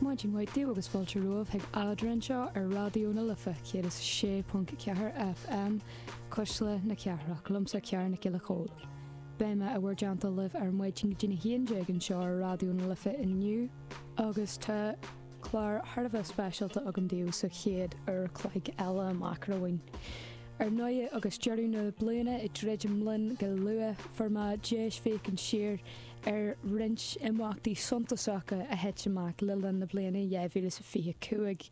Maidin mhaith daoibh agus fáilte romhaibh chuig Eadra anseo ar Raidió na Life 106.4 FM, Cuisle na Cathrach, liomsa Ciara Nic Giolla Chóill. Beidh mé in bhur dteannta libh ar maidin go dtí'n 11 anseo ar Raidió na Life inniu agus tá clár thar a bheith speisialta agam daoibh sa chéad uair chloig eile amach romhainn. Ar ndóigh, agus deireadh na bliana ag druidim linn go luath, fuair mé deis féachaint siar ar roinnt imeachtaí suntasacha a thit amach le linn na bliana 2025.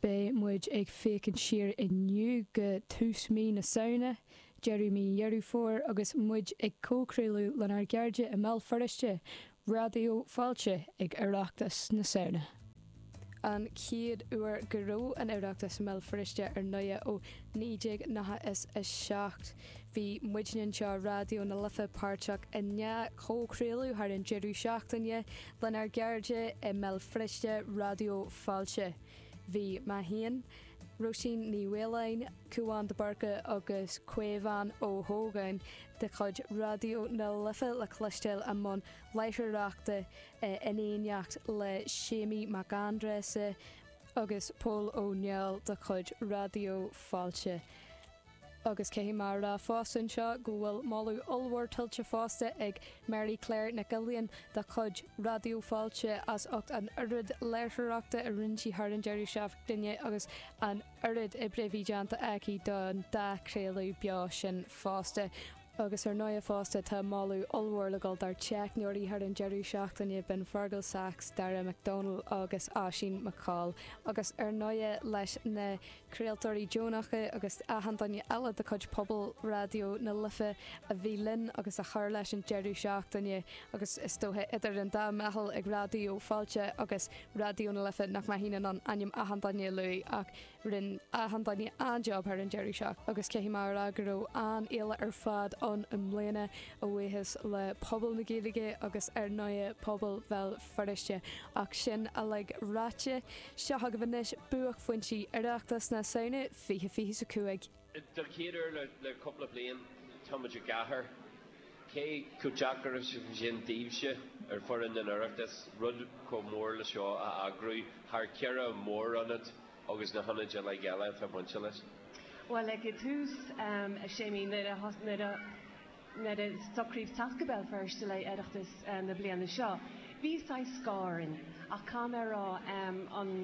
Beidh muid ag féachaint siar inniu go tús mhí na Samhna, deireadh mhí Dheireadh Fómhair agus muid ag comhchraoladh lenár gcairde i mBéal Feirste, Raidió Fáilte, ag Oireachtas na Samhna. an chéad uair go raibh an tOireachtas i mBéal Feirste ar ndóigh ó 1997. Bhí muidne anseo i Raidió na Life páirteach i ndá chomhchraoladh thar an deireadh seachtaine lenár gcairde i mBéal Feirste, Raidió Fáilte. Bhí mé féin, Róisín Ní Mhaoláin, Cúán de Burca agus Caomhán Ó hÓgáin de chuid Raidió na Life le cloisteáil i mbun láithreoireachta in éineacht le Séimí Mac Aindreasa agus Pól Ó Néill de chuid Raidió Fáilte. Agus caithfidh mé a rá fosta anseo go bhfuil moladh ollmhór tuillte fosta ag Mary Claire Nic Uilíon de chuid Raidió Fáilte as ucht an oiread léirtheoireachta a rinne sí thar an deireadh seachtaine agus an oiread oibre a bhí déanta aici don dá chraoladh beo sin fosta. Agus ar ndóigh fosta tá moladh ollmhór le dhul dár dteicneoirí thar an deireadh seachtaine, b'in Fergal Sachs, Darragh McDonnell agus Oisín McColl. Agus ar ndóigh leis na craoltóirí deonacha agus achan duine eile de chuid pobal Raidió na Life a bhí linn agus a chuir leis an deireadh seachtaine. Agus is dóiche idir an dá mheitheal ag Raidió Fáilte agus Raidió na Life nach mbeinn in ann ainm achan duine a lua ach, Rinn achan duine an-jab thar an deireadh seachtaine agus caithfidh mé a rá go raibh an-fhéile ar fad ann i mbliana, a bhuíochas le pobal na Gaeilge agus ar ndóigh pobal Bhéal Feirste. Ach sin uilig ráite, seo agaibh anois buaicphointí Oireachtas na Samhna 2025. Den chéad uair le cúpla bliain, tá muid i gcathair, cé chomh deacair is a bhí sin daoibhse ar fhoireann an Oireachtais rud chomh mór le seo a eagrú thar cheithre mhór-ionad agus na hionaid uilig eile atá bainte leis? Bhuel, ag tús, a Séimí, nuair a, nuair a. Nuair a socraíodh teacht go Béal Feirste le hOireachtas na bliana seo, bhí saghas scáth orainn, ach caithfidh mé a rá, an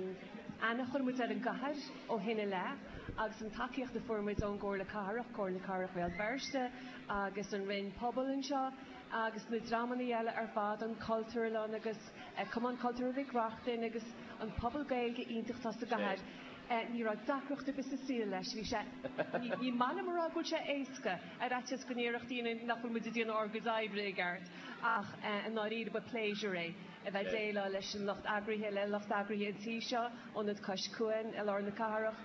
aithne a chuir muid ar an gcathair ó shin i leith, agus an tacaíocht a fuair muid ón gComhairle Cathrach, Comhairle Cathrach Bhéal Feirste agus an Roinn Pobal anseo, agus na dreamanna eile ar fad, an Chultúrlann agus Cumann Cultúrtha Mhic Reachtain agus an pobal Gaeilge iontach atá sa gcathair. Ní raibh deacracht ar bith sa saol leis. Bhí sé, ní maith liom a rá go bhfuil sé éasca, ar fhaitíos go ndéarfadh daoine nach bhfuil muid ag déanamh ár gcuid oibre i gceart, ach i ndáiríre ba pléisiúr é a bheith ag déileáil leis an lucht eagraithe, le lucht eagraithe an tí seo, Ionad Cois Cuain i lár na cathrach.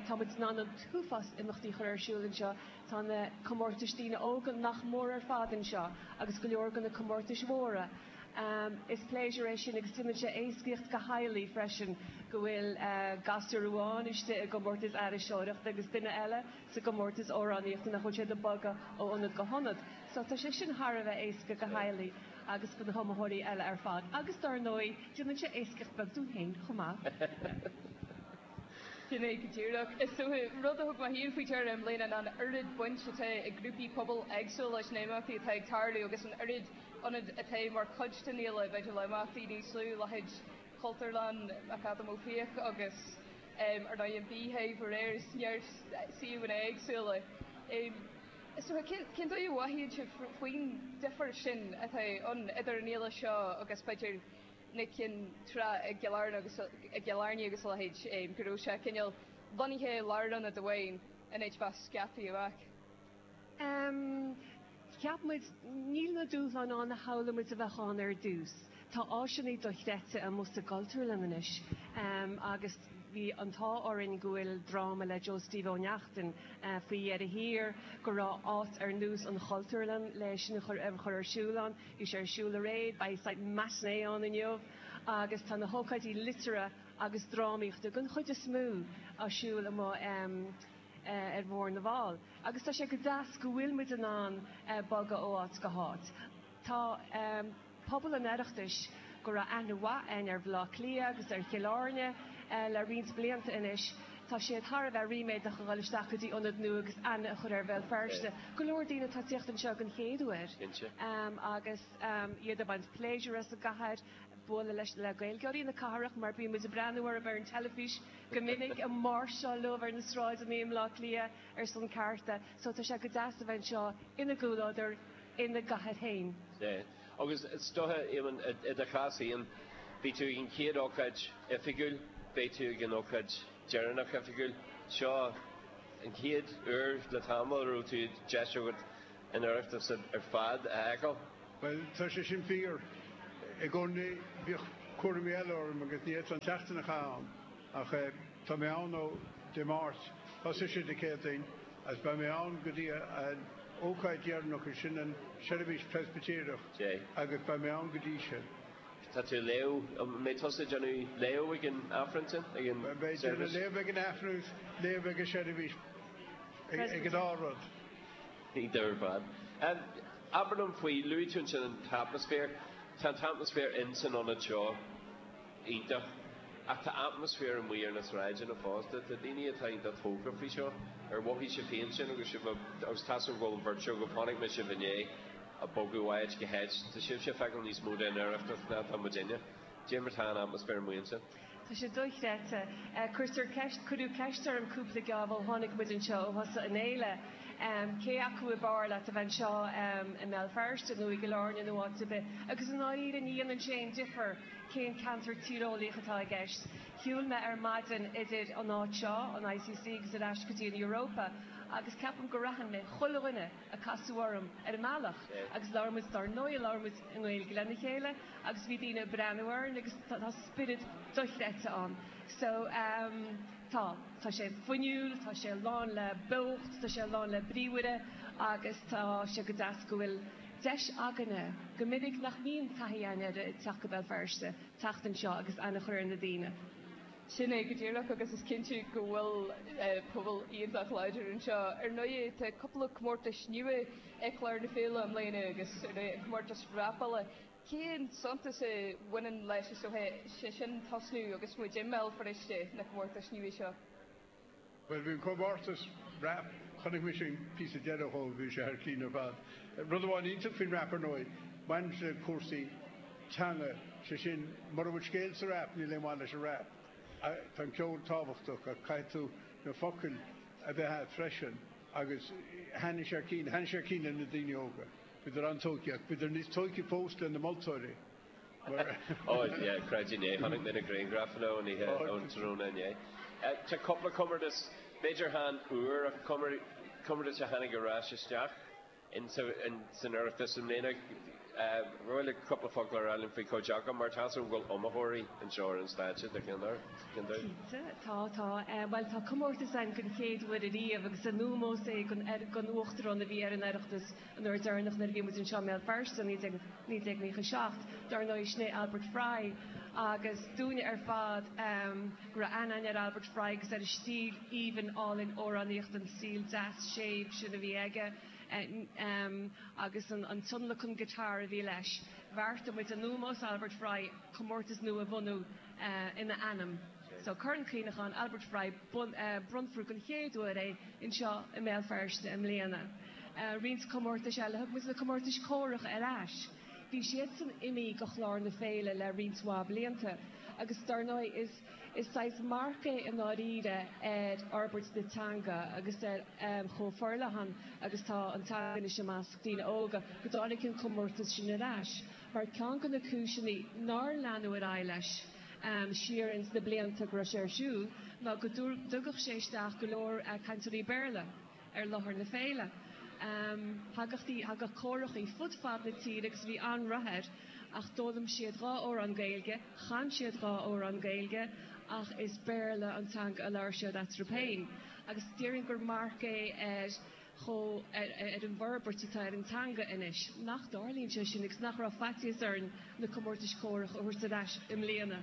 Tá muid in ann an t-uafás imeachtaí a chur ar siúl anseo. Tá na comórtais daoine óga nach mór ar fad anseo agus go leor de na comórtais mhóra. Is pléisiúr é sin agus déanann sé éascaíocht do theaghlaigh freisin go bhfuil gasúr amháin istigh i gcomórtas aithriseoireachta agus duine eile sa gcomórtas amhránaíochta nach bhfuil siad ag bogadh ó ionad go hionad. So tá sé sin thar a bheith éasca do theaghlaigh agus do na hiomaitheoirí eile ar fad agus dár ndóigh déanann sé éascaíocht beag dúinn féin chomh maith. Sin é go díreach. Is rud a thug mé féin faoi deara i mbliana ná an oiread baint atá ag grúpaí pobail éagsúla leis na himeachtaí atá ag tarlú agus an oiread ionad atá mar chuid den fhéile b'fhéidir le imeachtaí níos lú, leithéid Chultúrlann McAdam Ó Fiaich agus ar ndóigh an Beehive aréir is mar sin suíomhanna éagsúla. Is dócha, cén dóigh a mhothaíonn sé faoin difear sin atá ann idir an fhéile seo agus b'fhéidir na cinn tráth i gCill Airne agus a leithéid, go raibh sé cineál lonnaithe i lárionad amháin in áit bheith scaipthe amach? Cheap muid, níl na dúshláin ann a shamhlaigh muid a bheadh ann ar dtús. Tá áiseanna dochreidte amuigh sa gCultúrlann anois agus bhí an t-ádh orainn go bhfuil dráma le Joe Steve Ó Neachtain faoi dheireadh thiar, go raibh áit ar nós an Chultúrlann le sin a chur ar siúl ann. Bhí sé ar siúl aréir, beidh saghas matinée ann inniu agus tá na hócáidí liteartha agus drámaíochta, den chuid is mó, ar siúl amuigh ar Bhóthar na bhFál. Agus tá sé go deas go bhfuil muid in ann bogadh ó áit go háit. Tá pobal an Oireachtais, go raibh aithne mhaith a'inn ar Bhaile Átha Cliath agus ar Chill Airne le roinnt blianta anois, tá siad thar a bheith ríméadach a dhul isteach go dtí ionad nua agus aithne a chur ar Bhéal Feirste. Go leor daoine atá ag tíocht anseo den chéad uair agus iad ag baint pléisiúir as an gcathair. bualadh leis le Gaeilgeoirí na cathrach mar bíonn muid ag breathnú orthu ar an teilifís go minic, ag máirseáil leo ar na sráideanna i mBleá Cliath ar son cearta. So tá sé go deas a bheith anseo ina gcomhluadar, ina gcathair féin. Yeah. Agus is dóiche, Éamonn, i do chás féin, beidh tú ag an chéad ócáid oifigiúil, beidh tú ag an ócáid deireanach oifigiúil. Seo an chéad uair le tamall a raibh tú, deis agat an Oireachtas ar fad a fheiceáil. Bhuel, tá sé sin fíor. I gcónaí bhíodh cúraimí eile orm agus ní fhéadfá an tseachtain a chaitheamh ann. Ach tá mé ann ó Dé Máirt, thosaigh sé Dé Céadaoin, agus beidh mé ann go dtí an ócáid dheireanach, is sin an seirbhís Preispitéireach, agus beidh mé ann go dtí sin. Tá tú ag léamh, an mbeidh tusa ag déanamh léamh ag an Aifreann sin, ag an tseirbhís? Beidh mé ag déanamh léamh ag an Aifreann agus léamh ag an seirbhís, ag an dá rud. Níl dabht. Abair liom faoi, luaigh tú ansin an t-atmaisféar. Tá an t-atmaisféar in san ionad seo iontach ach tá atmaisféar amuigh ar na sráideanna fosta. Tá daoine atá iontach tógtha faoi seo. Ar mhothaigh sibh féin sin agus sibh agus tá a fhios agam go bhfuil an bheirt agaibh, chonaic mé sibh inné ag bogadh ó áit go háit, tá sibhse ag feiceáil níos mó den Oireachtas ná atá muidinne. Cad é mar tá an t-atmaisféar amuigh ansin? Tá sé dochreidte. Cuirtear ceist, cuireadh ceist orm cúpla geábh ó tháinig muid anseo, ó thosaigh an fhéile, cé acu ab fhearr leat a bheith anseo i mBéal Feirste nó i gCill Airne nó áit ar bith, agus i ndáiríre ní dhéanann sé aon difear cén ceantar tíreolaíoch atá i gceist. Shiúil mé ar maidin idir an áit seo, an ICC agus ar ais go dtí an Europa agus ceapaim gur aithin mé chuile dhuine, a casadh orm ar an mbealach agus labhair muid, dár ndóigh labhair muid i nGaeilge lena chéile agus bhí daoine ag breathnú orainn agus tá spiorad dochreidte ann. So, em, tá, tá sé fuinniúil, tá sé lán le beocht, tá sé lán le bríomhaireacht agus tá sé go deas go bhfuil deis againne, go minic nach mbíonn taithí a'inn air ag teacht go Béal Feirste, teacht anseo agus aithne a chur ar na daoine. Sin é go díreach, agus is cinnte go bhfuil pobal iontach láidir anseo. Ar ndóigh, tá cúpla comórtais nua ar chlár na féile i mbliana agus, ar ndóigh, an comórtas rapála. Cén suntas a bhaineann leis, is dócha, iad sin a thosnú agus muid i mBéal Feirste, na comórtais nua seo? Bhuel, bhí an comórtas rap, chonaic mise an píosa deireadh dhó, bhí sé thar cinn ar fad. Rud amháin iontach faoin rap ar ndóigh, baineann sé le cúrsaí teanga, sé sin, mura bhfuil scéal sa rap, níl aon mhaith leis an rap. Tá an ceol tábhachtach ach caithfidh tú na focail a bheith agat freisin agus thaitnigh sé thar cinn, thaitnigh sé thar cinn le na daoine óga. Bhíodar an-tógtha ach bhíodar níos tógtha fós le na moltóirí. Ó, yeah, creidim é, chonaic mé na grianghraif inniu ón oíche, ón tráthnóna inné. Tá cúpla comórtas, b'fhéidir chan úr, ach comórtas a tháinig ar ais isteach san Oireachtas i mbliana. An bhfuil cúpla focal ar fáil faoin gcomhdháil, mar tá a fhios agam go bhfuil iomaitheoirí anseo ar an stáitse, do cheann díobh, do cheann díobh? Cinnte, tá, tá. Bhuel, tá comórtas ann den chéad uair ariamh agus in ómós é don Uachtarán a bhí ar an Oireachtas An uair deireanach nuair a bhí muid anseo i mBéal Feirste, 1997, dar ndóigh, sin é Albert Fry agus dúinne ar fad go raibh aithne againn ar Albert Fry agus ar an stíl aoibhinn álainn amhránaíochta, an stíl deas séimh sin a bhí aige agus an tionlacan guitar a bhí leis. Bheartaigh muid in ómós Albert Fry comórtas nua a bhunú, ina ainm. So Corn Cuimhneacháin Albert Fry, bronnfar den chéad uair é anseo i mBéal Feirste i mbliana. Roinnt comórtais eile, thug muid na comórtais córach ar ais, bhí siadsan imithe de chlár na féile le roinnt mhaith blianta agus dar ndóigh is is saghas marc é i ndáiríre ar fhorbairt na teanga agus ar chomh forleathan agus tá an teanga anois i measc daoine óga go dtáinig an comórtas sin ar ais. mar ceann de na cúiseanna nár leanadh ar aghaidh leis siar ins na blianta go raibh sé ar siúl ná go dtugadh sé isteach go leor cainteoirí Béarla ar láthair na féile. Thagadh córacha fud fad na tíre agus bhí an-rath air. Ach d'fhoghlaim siad dhá amhrán Gaeilge, chan siad dhá amhrán Gaeilge ach is Béarla an teanga a labhair siad eatarthu féin agus déarfainn gur marc é ar chomh ar an bhforbairt atá ar an teanga anois, nach dtarlaíonn sé sin agus nach raibh faitíos orainn na comórtais córach a thabhairt ar ais i mbliana.